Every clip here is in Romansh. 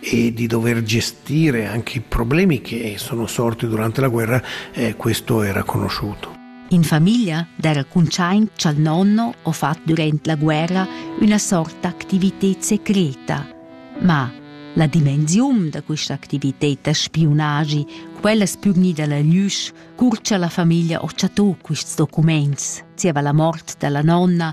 e di dover gestire anche i problemi che sono sorti durante la guerra, eh, questo era conosciuto. In famiglia der cuntschaint cha'l nonno ho fat durant la guerra üna sorta activité secreta. Ma la dimensiun da questa activité da spiunagi, quella spürnida la glüsch, curcia la famiglia ho chatto quists documents, zieva la mort dalla nonna,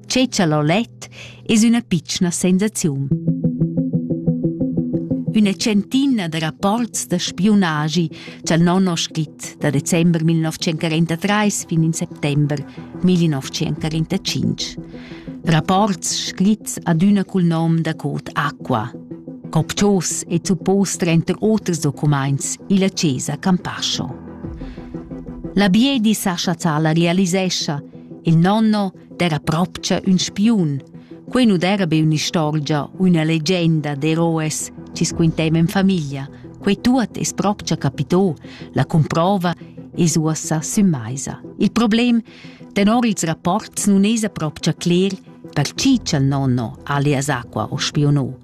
Tgei tschalolet es üna pitschna sensaziun. Üna centina da rapports da spiunagi cha'l non ho scrit da december 1943 fin in settember 1945. Rapports scrits adüna cul nom da code Aqua. Copchos e suppos trenter oters documaints illa Chiesa Campascio. La Biedi Sascha Zala realisescha Il nonno d'era propcha ün spiun. Quei nu d'era be ün'istorgia u üna legenda d'eroes chi squinteiva in famiglia. Quei tuot es propcha capitò, la comprova es uossa sün maisa. Il problem, tenor ils rapports, nun esa propcha cler per chi cha'l nonno alias Aqua o spionò.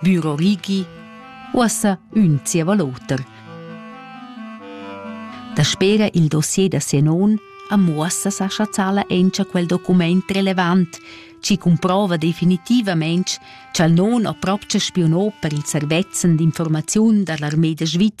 Büro Rigi, uossa ün zieva l'oter. Daspera il dossier da sia non a muossa sa chazzala encha quel document relevant, ci comprova definitivament cha'l non ha propcha spionò per il servezzan d'informaziun dall'armée da Sviz